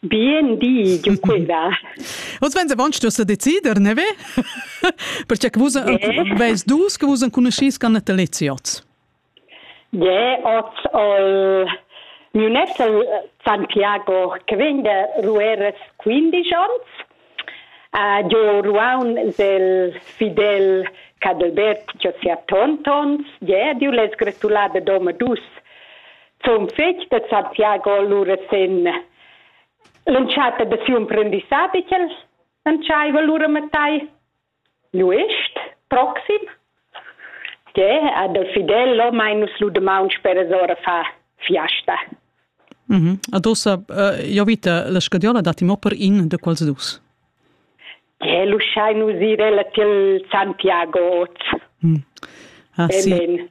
Bien di, Giuqueva. Oz vegns avon stuess decider, ne ve? Perché che vus veis dus che vus enconuschis con nataleziots. Je, oz ol miu net San Piago che vegn da Rueras 15 ans Jeu ruaun sil fidel Cadelbert che ha sia tontons. Jeu diu lez gratulà dad omadus zun fetg da Santiago lura sin l'entschatta da siu emprendissadi ch'el entscheiva lura mattai. L'uestg proxim? Tgè ha dal Fidel mai nus lu damaun speras ora fa fiasta? Mm -hmm. Ad ossa, uh, io vita, la scadiola datti mo per in de quals dus. Tgè lu schai nus ir ella til Santiago oz. Mm. Ah, sì.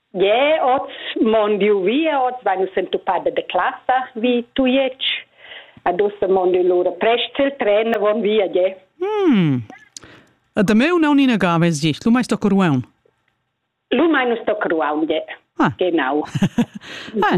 Yeah, oz mon diu via, oz vai nus entupada de classa vi Tujetsch. Adusse mon diu lura prest il tren avon via, yeah. Hmm. A da meu naun ina gava es gist, lu mai sto coruaun. Lu mai nus sto coruaun, yeah. Ah. Genau. ah,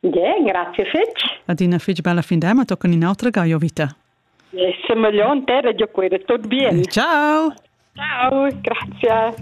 Yeah, grazie fitg. Adina fitg bella fin da, ma toccan un'altra gaio vita. Semeglion te, radio qui, tot bien. Ciao. Ciao, grazie.